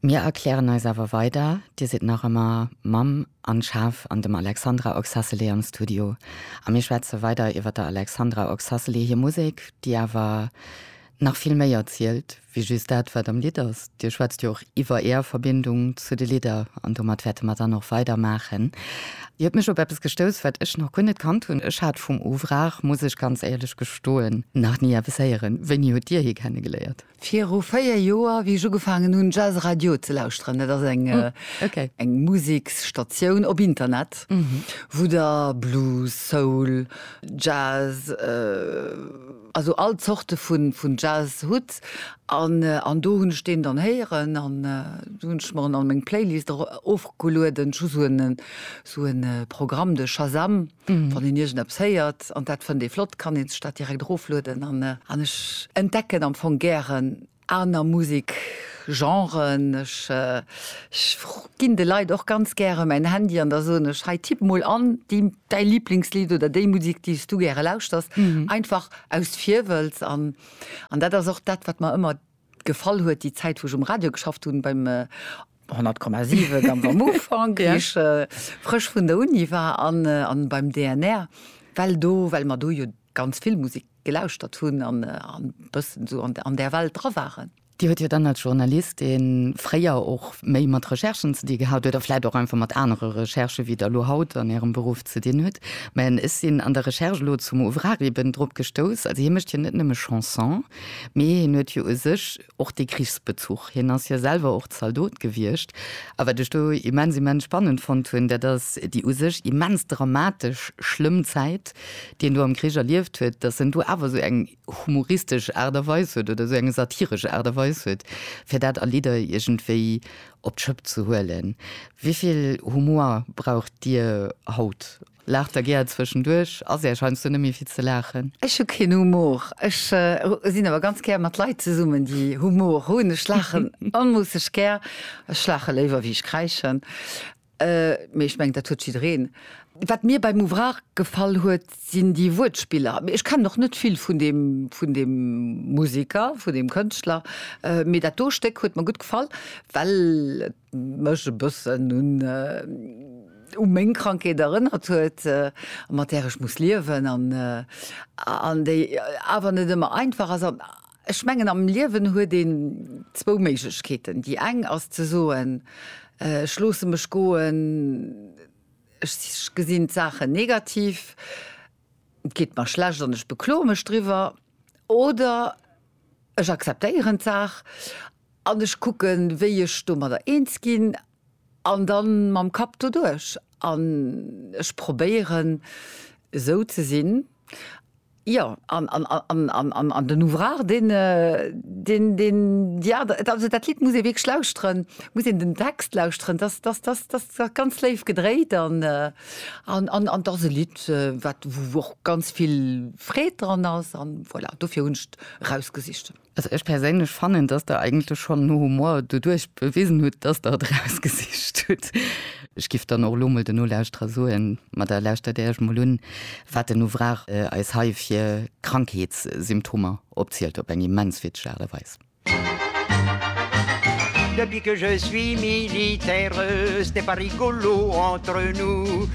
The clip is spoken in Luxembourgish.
Mir erklären eis awer weider, Dir sidd nach ëmmer Mamm an Chef an dem Alexandra Oxacelli am Studio. A mir schwätze weider iwwer der Alexandra Oxacelli hir Musek, déi awer nach vill méi erzielt wéi just dat, wat am Lidd ass. Dir schwätzt jo och iwwer Är Verbindung zu de Lidder an domat wäerte mer dann och weider maachen. Dir huet mech op eppes gestouss, wat ech nach guer net kannt hunn. Ech hat vum Ouvrage, muss ech ganz éierlech gestoen, nach ni eppes héieren. Wéini hutt Dir hie kenne geléiert? Viru 4 Joer, wéi ech ugefaangen hunn, Jazz Radio ze lauschteren, dat ass eng, eng Museksstatioun op Internet, wou da Blues, Soul, Jazz, also all Zorte vun, vun Jazz hutt. An, an do hunn ech deen dann héieren an do hunn ech mer en a meng Playlist erofgelueden. Ech hu sou en, sou en Programm, de Shazam. Wann een iergendeppes héiert an dat fënnt ee flott, kann ee sech dat direkt eroflueden. An ech entdecken am Fong gären aner Musekgenren. Ech ginn de Leit och ganz gäre mäin Handy an da soen ech, hei tipp mol an däi Liblingslidd oder déi Musek, déi s du gäre lauschters, einfach aus Virwëlz. An dat ass och dat, wat mer ëmmer. gefall huet, déi Zäit wou ech um Radio geschafft hunn, beim 100,7 am Amufang, wéi ech frësch vun der Uni war, an an beim DNR, well do, well mer do jo ganz vill Musek gelauschtert hunn an an bëssen esou an an där Welt dra waren. Dir huet jo dann als Journalistin fréier och méi mat Recherchen ze di gehat oder vläit och einfach mat anere Recherchen, wéi der elo haut an ärem Beruff ze dinn hutt. Mä ech sinn an der Recherche elo zum Ouvrard eben drop gestouss, also hie mécht jo net nëmme Chanson. Mee hien huet jo u sech och dee Krichsbezuch, hien ass jo selwer och Zaldot gewiescht. A wat ech do immens, immens spannend fonnt hunn, dat ass déi u sech immens dramatesch, schlëmm Zäit, déi en do am Krich erlieft huet, datt en do awer esou eng humoristesch Aart a Weis huet oder esou eng satiresch Aart a Weis huet, fir dat a Lidder iergendwéi op d'Schëpp ze huelen. Wéi vill Humor braucht Dir haut? Laacht der gär zwëschenduerch? Ass Äech heiansdo net méi fir ze laachen? Ech hu keen Humor. Ech sinn awer ganz gär mat Leit zesummen, déi Humor hunn. Ech laachen onmoosseg gär. Ech laache léiwer, wéi ech kräischen. Mee ech mengen, dat huet jiddereen. Wat mir beim Ouvrage gefall huet, sinn déi Wuertspiller. Ech kennen och net vill vun deem, vun deem Museker, vun deem Kënschtler. Mee dat do Stéck huet mer gutt gefall, well et. mech e bëssen un u meng Krankheet erënnert huet, mat där ech muss liewen an an déi awer net ëmmer einfach ass. An ech mengen am Liewen huet een zwou Méiglechkeeten. Déi eng ass ze soen, ech loosse mech goen, ech gesinn d'Saachen negativ, et geet mer schlecht an ech bekloe mech driwwer. Oder ech akzeptéieren d'Saach An ech kucken, wéi ech domadder eens ginn an da mam Kapp doduerch. An ech probéieren, esou ze sinn. Jo, an den Ouvrard, deen, deen, jo, also dat Lidd muss ee wierklech lauschteren, muss een den Text lauschteren. Dat ass ganz léif gedréit an dat ass e Lidd, wat, wou och ganz vill Freed dran ass. An voilà, dofir hunn ech et erausgesicht. Also ech perséinlech fannen, dass Der eigentlech schonn no Humor doduerch bewisen hutt, dass Der et erausgesicht hutt. Ech giff dann och elo mol den Nolauschterer soen, ma da lauschtert Der Iech mol un, wat den Ouvrard eis hei fir Krankheetssymptomer opzielt op eng immens witzeg Aart a Weis. Depuis que je suis militaire, ce n'est pas rigolo entre nous.